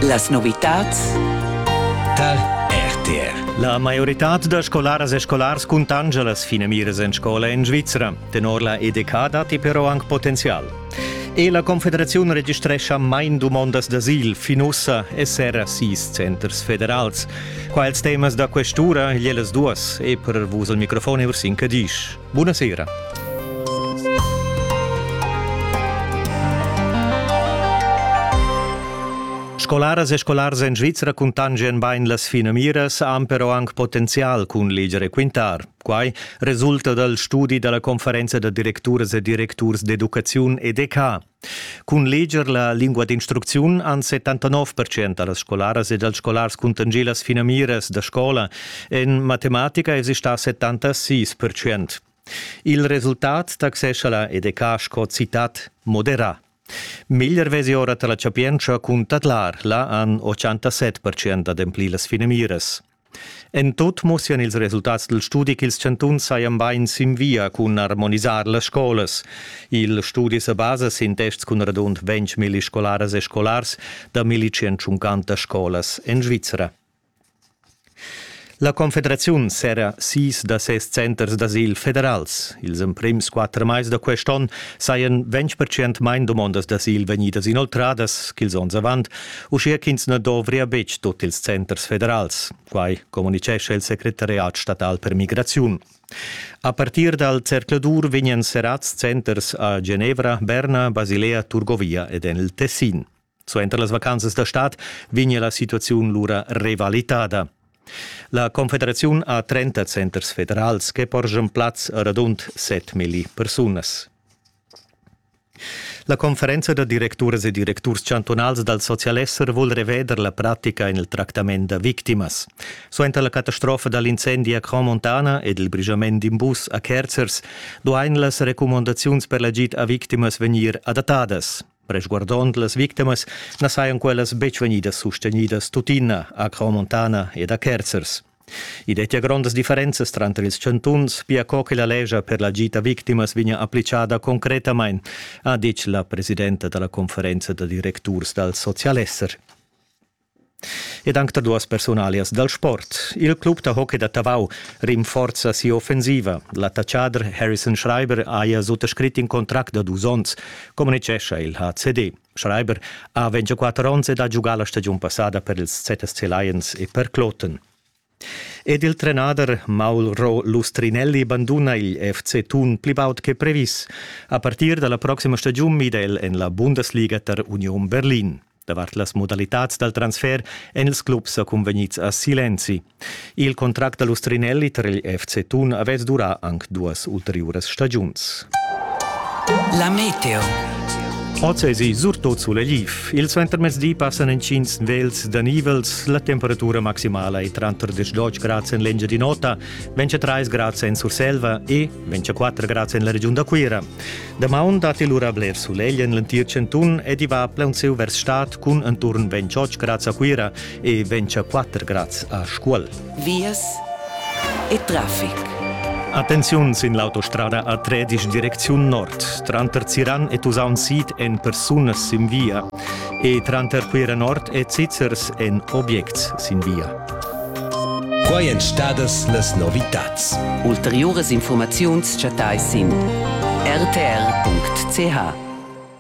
Las novitads tar RTR. La maioritad da scolaras e scolars cuntanscha las finamiras en scola en Svizra. Tenor la EDK datti però anc potenzial. E la Confederaziun registrescha main dumondas d'asil fin ussa e serra sis centers federals. Quels temas da questura igl ellas duas e per vus al microfon Ursin Cadisch. Buna sera. Scolaras e scolars en Svizra cuntangen bain las finamiras, han però anc potenzial cun leger e quintar. Quai resulta dal studi da la conferenza da directuras e directurs d'educaziun EDK. Cun leger la lingua d'instrucziun han 79% da las scolaras e dals scolars cuntanschì las finamiras da scola. En matematica èsi stà 76%. Il resultat taxescha la EDK sco citat moderà. Meglier vesi ora tar la chapientscha cun tadlar. Là han 87% ademplì las finamiras. En tut mussian ils resultats dal studi ch'ils chantuns sajan bain sin via cun armonisar las scolas. Il studi sa basa sin tests cun radund 20.000 scolaras e scolars da 1.150 scolas en Svizra. La Confederaziun serra sis da ses centers d'asil federals. Ils emprims quatter mais da quest onn sajan 20% main dumondas d'asil vegnidas inoltradas ch'ils onns avant uschia ch'ins na dovria betg tut ils centers federals. Quai communitgescha il secretariat statal per migraziun. A partir dal zercladur vegnan serrads centers a Genevra, Berna, Basilea, Turgovia ed en il Tessin. Suenter las vacanzas da stad vegnia la situaziun lura revalitada. La Confederaziun ha 30 centers federals che porschan plaz a radund 7 million persunas. La conferenza da directuras e directurs chantunals dal socialesser vul reveder la pratica en il tractament da victimas. Suenter la catastrofa da l'incendi a Cramontana ed il brigiament d'in bus a Kerzers duain las recumandaziuns per l'agid a victimas vegnir adattadas. Resguardond las victimas na sajan quellas betg vegnidas sustenidas tuttina a Cramontana ed a Kerzers. I dettia grondas differenzas tranter ils chantuns, pia co che la lescha per la gita victimas vegnia applicada concretamain, ha ditg la presidenta da la conferenza da directurs dal socialesser. Ed anc da duas personalias dal sport. Il club da hockey da Tavau rinforza sia offensiva. L'attaccader Harrison Schreiber haja suttascrit in contract da dus onns, communitgescha il HCD. Schreiber ha 24 onns ed ha giugà la stagiun passada per ils ZSC Lions e per Kloten. Ed il trenader Mauro Lustrinelli banduna il FC Thun pli baud che previs. A partir da la proxima stagiun mida el en la Bundesliga tar Union Berlin. Davart las modalitads dal transfer èn ils clubs sa cunvegnids a Silenzi. Il contract da l'ustrinelli tar il FC Thun avess durà anc duas ulteriuras stagiuns. La meteo. Oz èsi surtut sulegl. Il suentermezdi passan intgins vels da nivels. La temperatura maximala è tranter 10 grads en l'Engiadin'Ota, 23 grads en Surselva e 24 grads en la regiun da Cuira. Damaun datti lura bler sulegl en l'entir chantun ed i va plaunsieu vers stad cun enturn 28 grads a Cuira e 24 grads a Scuol. Vias e traffic. Attenziun sin l'autostrada a Tredisch direcziun nord, tranter Ziran e Tusaun Sid en persunas sin via e tranter Cuira Nord e Zizzers en objects sin via. Quai èn stadas las novitads. Ulteriuras informaziuns chattais sin rtr.ch.